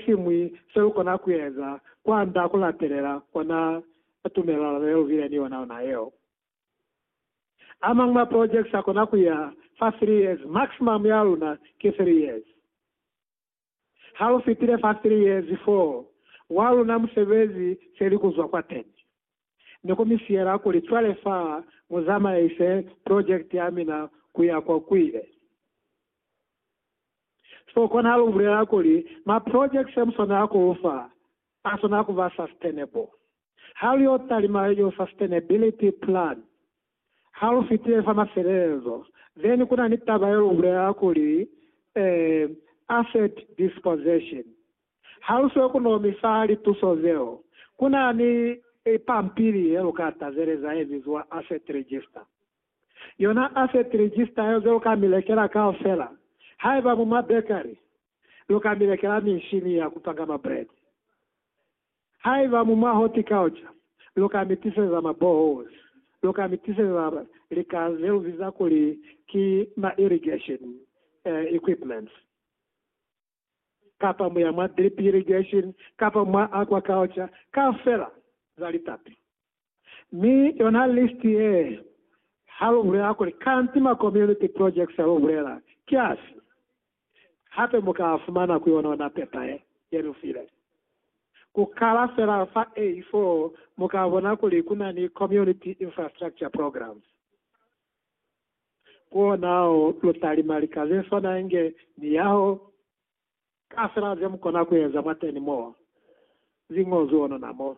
siñwi selukona kueza kwand'a kulatelela ona tumelelano yelubile ni yona ona yeo. Amañwi ma projects akona kuya fa three years, maximum yaluna ki three years. Halufitile fa three years foo, waluna musebezi selikuzwa kwateni. Ne ku mi siyela kuli, Cwale fa mu zamaise project ya mina ku ya kwa kuile. So kona lu bulela kuli, ma projects mu swanela ku lu fa, a swanela ku ba sustainable. Ha lu yo talima yo sustainability plan, Ha lu fitile fa mafelelezo, then ku na ni taba ye lu bulela kuli, eh, asset dispossession. Ha lu siyo ku no mi fa lituso zeo, ku na ni pampili ye lu ka tazeleza ye biziwa asset register. Yona asset register yeo ze lu ka mi lekela kaufela, haiba mu ma bakery, lu ka mi lekela minshini ya ku panga ma bread. Haiba mu mwa horticulture, lu ka mi tiseza ma boreholes, lu ka mi tiseza lika ze lu biza kuli ki ma irrigation equipments, kapa muya mwa drip irrigation, kapa mwa aquaculture, kaufela za litapi. Mi yona listi ye, ha lu bulela kuli Kantima Community Projects lu bulela ki afi, hape mu ka fumana ku yonona pepa ye, ye lu file. Ku kala fela fa A4 mu ka bona kuli ku na ni Community Infrastructure Programs. Ku ona o lu ta lima lika ze swana inge miyaho, kafela ze mu kona ku eza mwateni mo zi ñozwi onona mo.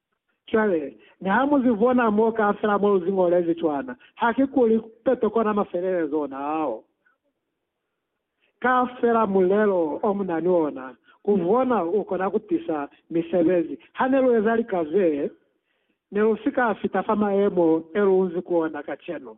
Cwale, niha mu zi bona mo kaufela mo lu zi ñolezi cwana, ha ki kuli peto kona mafelelezo ona ao. Kaufela mulelo o mu na ni ona, ku bona u kona ku tisa misebezi. Ha ne lu eza lika zee, ne lu si ka fita fa mayemo e lu nzi ku ona kacenu.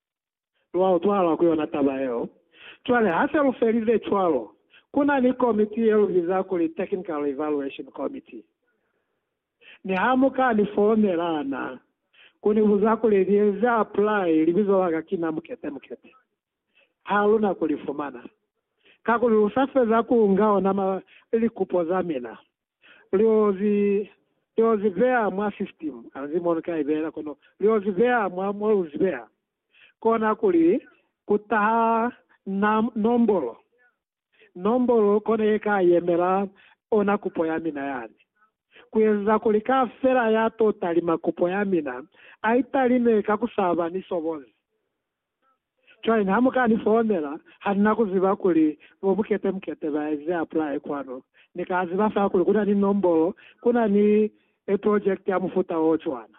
Lwa utwahala ku yona taba yeo. Cwale ha se lu felile cwalo, ku na ni komiti ye lu biza kuli Technical Evaluation Committee. Mi ha mu ka ni founela na ku ni buza kuli ni eze apply, libizo la ka kina Mukete Mukete. Ha lu na ku li fumana, kakuli lu sa feza ku nga ona ma likupo za mina. Liozi, liozi beha mwa system, anzi mo luka ibehela kono liozi beha mwa mo lu zibeha kona kuli ku taha na, nombolo, nombolo kona ye ka yemela ona kupo ya mina yani, ku eziza kuli kafela ya to talima kupo ya mina a italime ka ku saba ni sobozi. Cwale ne ha mu ka ni founela, ha ni na ku ziba kuli bo Mukete Mukete ba ezize apply kwanu. Ni ka ziba fa kuli ku na ni nombolo, ku na ni e project ya mufuta o cwana.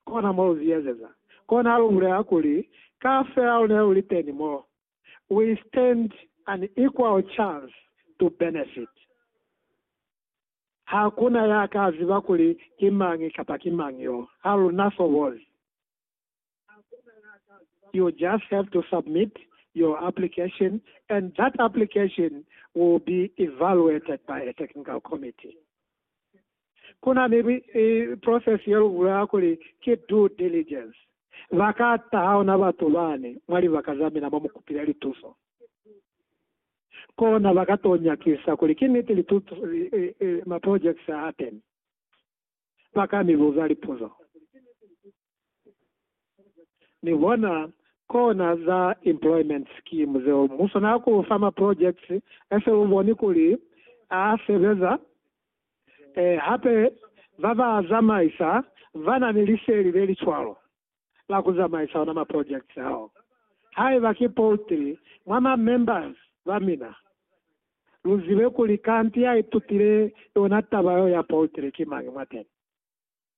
Kona mo lu zi ezeza. Kona ha lu bulela kuli, Ka fela lu ne lu li teni mo, we stand an equal chance to benefit. Ha ku na ya ka ziba kuli ki mañi kapa ki mañi yo. Ha lu na sobozi. You just have to submit your application and that application will be evaluated by a technical committee. Kuna ni process ye lu bulelanga kuli ki due diligence. Ba ka taha ona batu bani mwa libaka za mina mo mu kupile lituso. Kona ba ka to nyakisa kuli ki niti lituso, ma projects a teni. Ba ka mi buza lipuzo. Ni hona kona za employment scheme zeo muso na ku fa ma projects ese u boni kuli a sebeza. Ee, hape ba ba zamaisa ba na ni liseli le li cwalo la ku zamaisa ona ma projects ao. Haiba ki poultry mwa ma members ba mina, lu zibe kuli kanti ya itutile yona taba yeo ya poultry ki mañi mwateni.